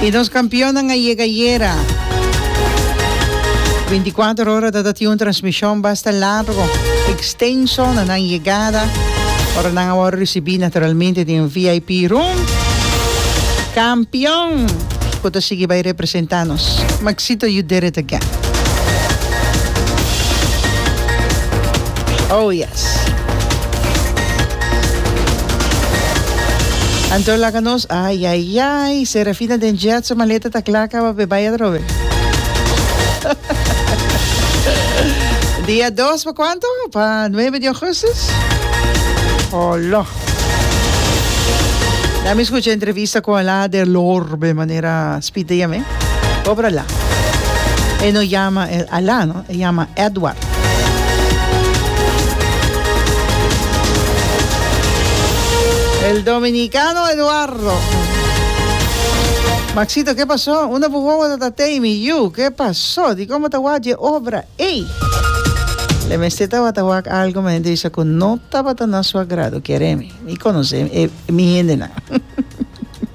Y nos campeonnan a yega ayera. Binticuater ora ta ta tin un transmision basta largo, extenso na nan yegada. Ora nan a wor ricibi naturalmente den VIP room. Campeon cu ta sigui bay representa nos. Maxito, you did it again. Oh yeah. Anto laga nos ayayay. Serafina den jet su maleta ta kla kaba pe bai atrobe. Dia dos pa kuanto? Pa nuebe di augustus? Olo. Na mi skucha entrevista ku Alaa der Lor be manera Speed ta yam'e. Kobra la. E no yama Alaa no. E yama Edward. El dominicano Eduardo. Maxito, ke paso? Una bu wowo ta ta tei mi yu. Ke paso? Dikon bo ta wak dje obra ey? Le mester tabata wak algo ma hende bisa ku no tabata na su agrado. Kere mi. Mi konosé mi hendenan.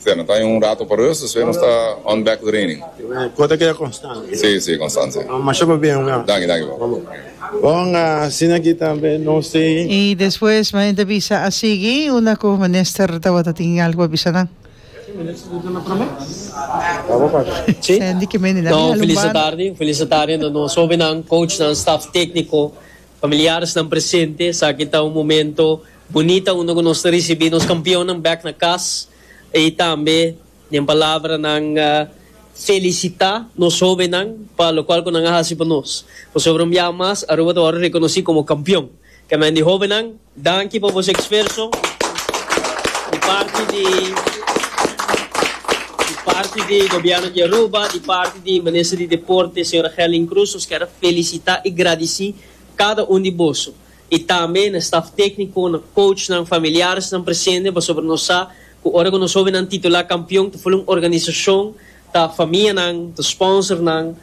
Sey no ta aña un rato pa rust, despues nos ta on back to training. Kos ta keda konstant. Sey sey konstant sey. Masha pa bien oga. Danki danki papi. Bon asina aki tambe no sey. Y despues ma enta bisa a sigui una cu minister tabata tin algo pa bisa nan. Sandy ke mende nan mi a lumba no. Un felice tarde na nos hobennan, coachnan, staff tecnico, familiaresnan presente. Esaki ta un momento. Bunita unda cu nos ta ricibi nos campeonnan bek na cas y tambe den palabranan felicita nos hobennan pa locual cu nan a haci pa nos. Pasobra un biaha mas Aruba ta worde reconoci como campeon. Canbia di hobennan danki pa boso exferso di parti di di parti di Gobierno di Aruba, di parti di Minister di Deporte, Sra. Gelin Croes, nos ker felicita y gradici cada un di boso. y tambe na staf tecnico, na coachnan, familiaresnan presente pasobra nos sa cu ora cu nos hobennan titula campeon ta full un organisacion, ta famianan, ta sponsornan,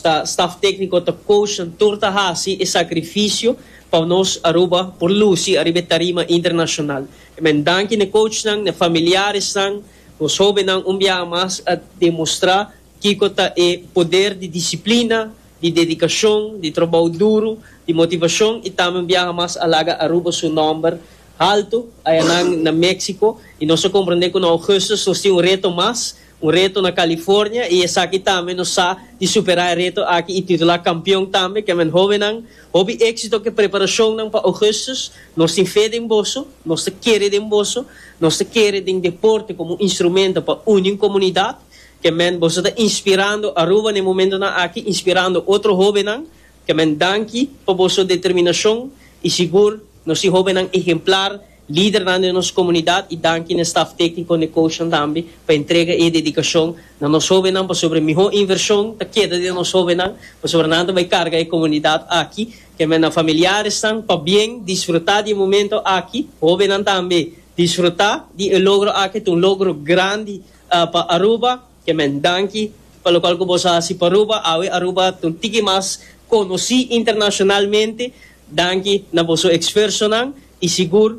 ta staf tecnico, ta coachnan tur ta haci e sacrificio pa nos Aruba por luci ariba e tarima internacional. E men danki n'e coachnan, n'e familiaresnan, nos hobennan un biaha mas a demostra kico ta e poder di disciplina, di dedikashon, di trobou duru, di motivashon i tambe un biaha mas a laga Aruba su nòmber haltu ayanan na Méksiko i nos a komprendé ku na Ougùstus nos tin un reto mas, un reto na Kalifornia i esaki tambe nos sa di superá e reto aki i titulá kampion tambe. Kèmen hóbennan, hopi éksito ku e preparashonnan pa Ougùstus. Nos tin fe den boso, nos ta kere den boso, nos ta kere den deporte komo un instrumento pa uni un komunidat Ke men boso ta inspirando Aruba n'e momentonan aki, inspirando otro hobennan. Ke men danki pa boso determinashon i sigur nos tin hobennan ehemplar, lidernan den nos komunidat i danki n'e staf tekniko n'e koushnan tambe pa e entrega i e dedikashon na nos hobennan pasobra e mihó invershon ta keda den nos hobennan pasobra nan ta bai karga e komunidat aki. Ke men na familiaresnan pabien disfrutá di e momento aki. Hobennan tambe disfrutá di e logro aki, ta un logro grandi. pa Aruba ke men danki pa lokual ku boso hasi pa Aruba awe Aruba ta un tiki mas konosí internashonalmente danki na boso eksfersonan i sigur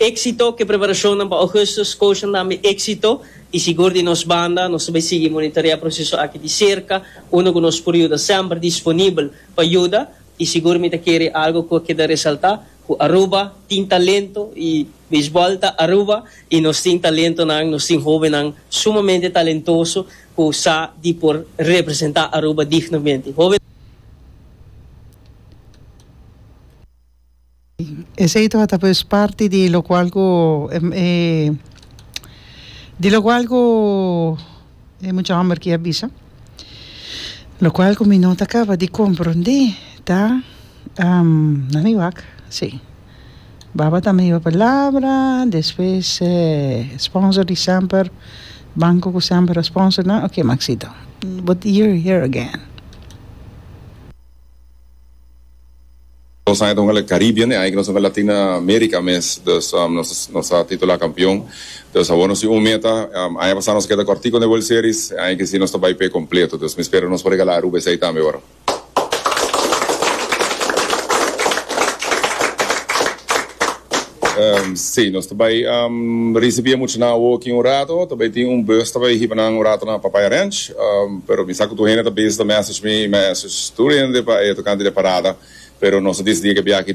éksito ke preparashonnan pa Ougustus Scotian tambe éksito i sigur di nos banda nos ta bai sigui monitorea proseso aki di serka unda ku nos por yuda semper disponibel pa yuda i sigur mi ta kere algu ku a keda resaltá Cu Aruba tin talento y Beisbol ta Aruba y nos tin talentonan, nos tin hobennan sumamente talentoso cu sa di por representa Aruba dignamente. Esey to a ta pues parti di locual cu di locual cu. E mucha homber ki a bisa, lokual ku mi no ta kaba di komprondé ta, na mi wak, sí, baba ta mi palabra, despues e sponsor di semper, banko ku semper a sponsor nan, oke Maxito, but you're here again. Dos aña ta hunga la Caribbean e aña ke nos ta hunga Latina Merica mes dus nos a titula kampion dus awor nos tin un meta aña pasa nos a keda kòrtiku na e World Series e aña ke si nos ta bai p'e kompleto dus mi spera nos por regala Aruba esei tambe ora Si, nos ta bai risibia mucha nan awo aki un rato. Ta bai tin un bus ta bai hiba nan un rato na Papaya Ranch. Pero mi sa ku tur hende ta bes ta message mi, message tur hende pa e tokante di e parada. Pero nos a disidi ke biaha aki.